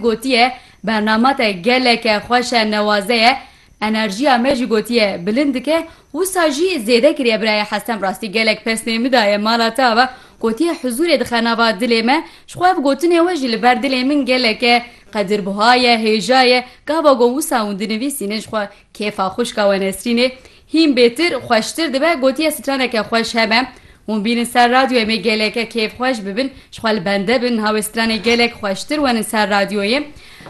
gotiye, Bernama te geleke xweş e, newaze ye. Enerjiya me jî gotiye bilind dike. Wisa jî zêde kiriye birayê Hesem rastî gelek pesnê min daye mala te ava. Gotiye huzûrê dixe nava dilê me. Ji xwe ev gotinê we jî li ber dilê min geleke qedirbuha ye, hêja ye. Gava got wisa hûn dinivîsînin ji xwe Kêfa xwişka we Nesrînê hîn bêtir, xweştir dibe, gotiye straneke xweş hebe. Hûn bînin ser radyoyê me geleke kêfxweş bibin, ji xwe li bende bin, niha wê stranê gelek xweştir wenin ser radyoyê.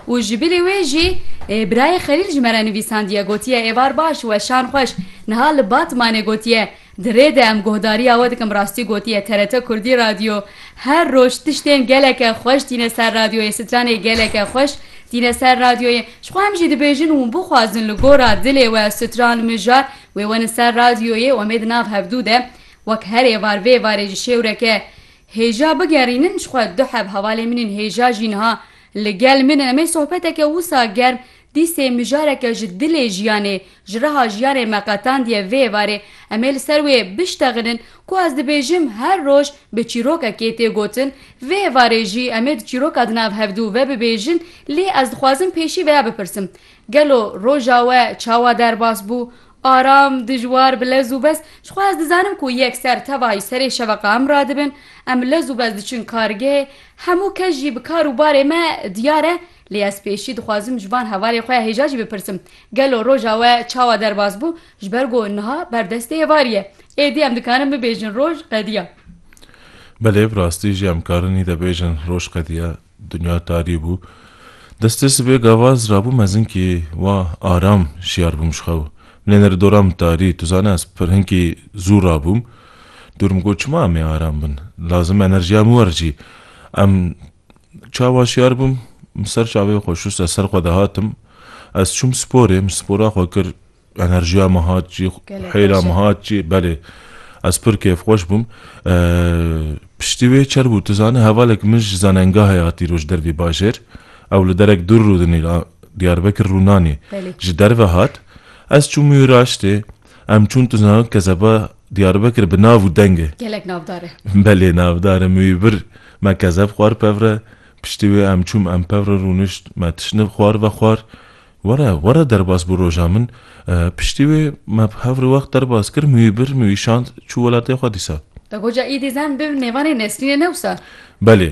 Û ji bilî wê jî birayê Xelîl ji me re nivîsandiye, gotiye êvar baş, weşan xweş. Niha li Batmanê gotiye, Di rê de em guhdariya we dikim rastî gotiye TRT Kurdî Radyo her roj tiştên geleke xweş tîne ser radyoyê stranê geleke xweş tîne ser radyoyê ji xwe em jî dibêjin hûn bixwazin li gora dilê we stran mijar wê wenin ser radyoyê û em ê di nav hevdu de wek her êvar vê êvarê ji şêwreke hêja bigerînin ji xwe du heb hevalên min ên hêja jî niha li gel min in em ê sohbeteke wisa germ Dîsê mijareke ji dilê jiyanê ji reha jiyanê me qetandiye vê êvarê em ê li ser wê biştexinin ku ez dibêjim her roj bi çîrokekê tê gotin vê êvarê jî em ê di çîroka di nav hevdu ve bibêjin lê ez dixwazim pêşî veya bipirsim gelo roja we çawa derbas bû aram dijwar bi lez û bez ji xwe ez dizanim ku yekser tevahî serê şeveqa em radibin em lez û bez diçin kargehê hemû kes jî bi kar û barê me diyar e Lê ez pêşî dixwazim ji van hevalên xwe ya hêja jî bipirsim, gelo roja we çawa derbas bû, ji ber ku niha ber destê êvarî ye. Êdî em dikarin bibêjin roj qediya. Belê, bi rastî jî em karin îde bêjin roj qediya. Dinya tarî bû. Destê sibê gava ez rabûm mezin kî wa aram şiyar bûm ji xew. Nêneri dora min tarî, tu zane ez pir hinkî zû rabûm. Dûr min got çima em ê aram bin. Lazim enerjiya min wericî. Em. Çawa şiyar bûm, min ser çavê xwe şûst, ez ser xwe dihatim. Ez çûm sporê, min spora xwe kir, enerjiya min hat cî, hêla min hat cî, belê. Ez pir kêfxweş bûm. Piştî wê çer bû, tu zanî hevalek min ji zanengahê hatî roj dervê bajêr. Ew li derek dûr rûdinî, Diyarbekir rûnanî. Ji derve hat, ez çûm Mîraştê, Em çûn tu zanî Kezeba Diyarbekir bi nav û deng e. Gelek navdar e. Belê navdar e. Min wî bir. Me kezeb xwar pevre. Piştî wê em çûm em pevre rûnişt. Me tiştine xwar ve xwar. Were, were derbas bû roja min. Piştî wê me bi hev re wext derbas kir. Min wî bir, min wî şand. Çû welatê xwe dîsa. Goja Îdî zen bi nêvanê Nesrînê ne wisa? Belê.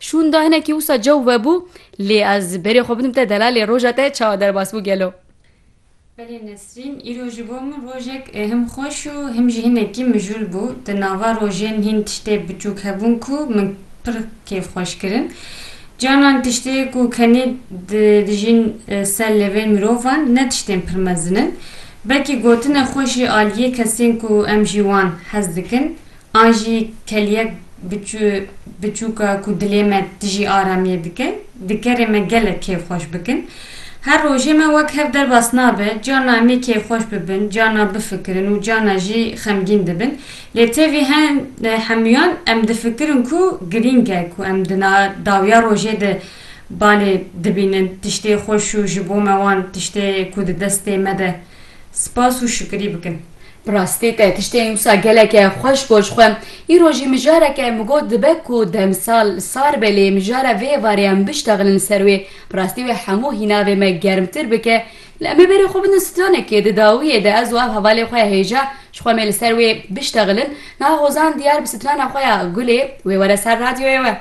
Şûnda hinekî wisa cew vebû, lê ez berê xwe bidim te delalê roja te çawa derbas bû gelo? Belê Nesrîn, îro ji bo min rojek him xweş û him jî hinekî mijûl bû. Di nava rojên hîn tiştê biçûk hebûn ku min pir kêf xweş kirin. Canan tiştê ku kenê dijîn ser lêvên mirovan ne tiştên pir mezin in. Belkî gotine xweş jî aliyê kesên ku em jî wan hez dikin An jî keliyek biçû biçûk e ku dilê me tijî aramiyê dike, dikerê me gelek kêfxweş bikin. Her rojê me wek hev derbas nabe, carna em ê kêfxweş bibin, carna bifikirin û carna jî xemgîn dibin. Lê tevî hen hemûyan em difikirin ku girîng e ku em di na dawiya rojê de balê dibînin tiştê xweş û ji bo me wan tiştê ku di destê me de spas û şikirî bikin. Bi rastî te tiştên wisa geleke xweş got ji xwe. Îro jî mijareke min got dibe ku demsal sar be lê mijara vê êvarê em biştexilin li ser wê. Bi rastî wê hemû hînavê me germtir bike. Lê em ê berê xwe bidin stranekê. Di dawiyê de ez û ev hevalê xwe hêja ji xwe mê li ser wê biştexilin. Niha Hozan diyar bi strana xwe ya Gulê wê were ser radyoyê we.